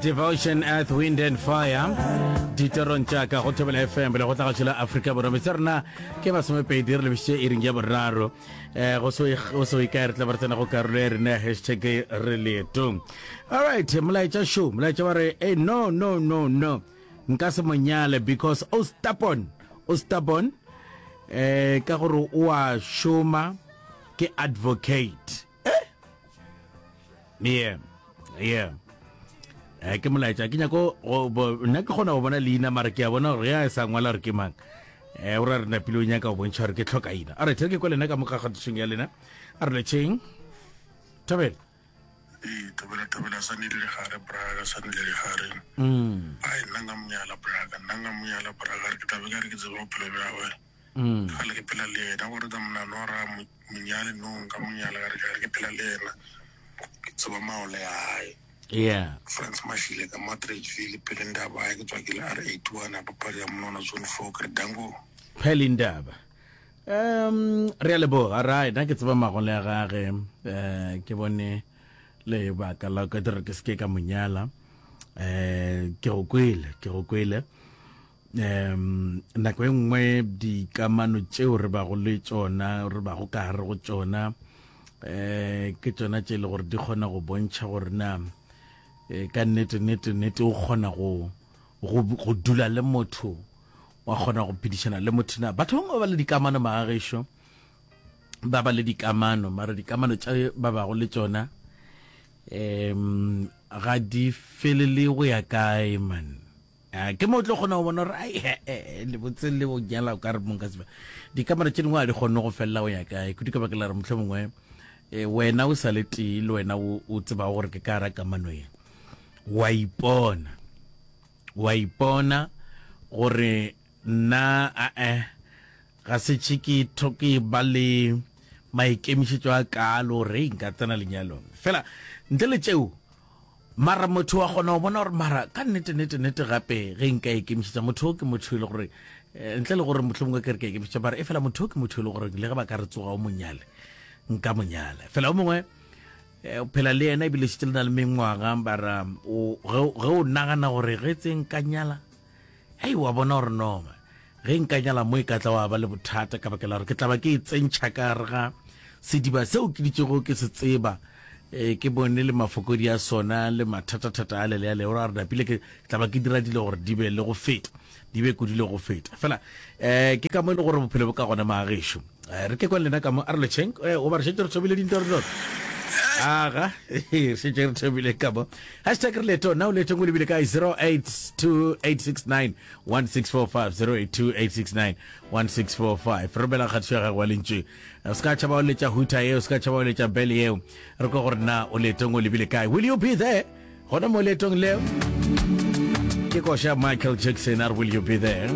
devotion earth wind and fire ditorong tša ka go thobela fm le go tlagašo la aforika borwa metse rena ke masomepedi re lebisitše e ring ya boraro um go so e kae re tla ba re tsena go karolo ya rena ya hashtag re leetong alright molaetša show molaetša wa re e no no no no nka se monyale because o stapon o stapon um ka gore o a šoma ke advocate eh? yeah yeah eh, ke molaetša ke nyako nna ke kgona go bona leina mara ke a bona gore ya e sa ngwala gore ke mang um o ra re napile o nyaka go bontšha gore ke tlhoka ina a re tlhere ke kwa lena ka moka kgatišong ya lena a re letšheng thabela ee thabela thabela sa ne le gare braga sa ne le gare mm. a e nna nka monyala braga nna nka monyala braga re ke tabe ka re ke tseba bophelo bja gagwe Mm. ga le ke phela le yena gore tsa monalora monyale nong ka monyale ga re ke phela le yena ke tseba maole ya gae yeah france mashile ka matridgeville pele ndaba ya ke tswa ke le r eighty one a papadi ya monona zone four ke re dango phele ndaba um re a leboga right a ke tseba magole ya gage um ke bone lebaka la ka dire ke seke ka monyala um ke go kwele ke go kwele um nako e nngwe dikamano tšeo re bago le tšona re bago ka gare go tšona um ke tšona tše e le gore di kgona go bontšha gore na eh, ka nnete nnete nnete o kgona go go dula le motho wa kgona go phedišana le motho na batho bangwe ba ba le dikamano magagešo ba ba le dikamano mara dikamano tša ba bago le tšona um ga di felele go ya kae man Ke mo o tlo kgona go bona gore ai he-e, lebotseng le o nyala o ka re mong ka seba dikamera tše dingwe a di kgonne go felela go ya kae kudu ka baka la re motlho mongwe eh, wena o sa le tee le wena o o tsebago gore ke ka ra kamano ye wa ipona wa ipona gore nna ae ga se tšhe ke tho ke ba le maikemišetšo a kaalo gore ei nka tsena lenyalong fela ntle le tšeo Mara motho wa kgona go bona gore mara ka nnete nete nete gape ge nka ikemišetša motho o ke motho e le gore eh, ntle le gore motlho mongwe ke re ka ikemišetša mara e fela motho o ke motho e le gore le ge ba ka re tsoga o monyale nka monyala fela o mongwe eh, o phela le yena ebile šitse le na le mengwaga bara ge o nagana gore ge tse nka nyala Hei, wa bona gore Norma, ge nka nyala mo e ka tla wa ba le bothata ka bakela gore ke tla ba ke e tsentšha ka gare ga sediba seo ke ditšego ke se tseba, e, ke bone le mafokodi a sona le mathatathata a lele a le gore a re napile ke tla ba ke dira dilo gore di be le go feta, di be kudu le go feta. Fela, e, ke ka mo e le gore bophelo bo ka gona, maagešo. Eh, re ke kwa lena ka mo a re lecheng eh, o ba re šetse re thobile dintwa re dona aga re šetse re thobile ka mo hashtag re leto na o letong o lebile kae 0828691645 0828691645 re romela kgatiso ya gago wa lentše o se ka tšhaba o letša huta eo o se ka tšhaba o letša bele eo re kwa gore na o letong o lebile kae will you be there gona mo letong leo ke koša michael jackson a re will you be there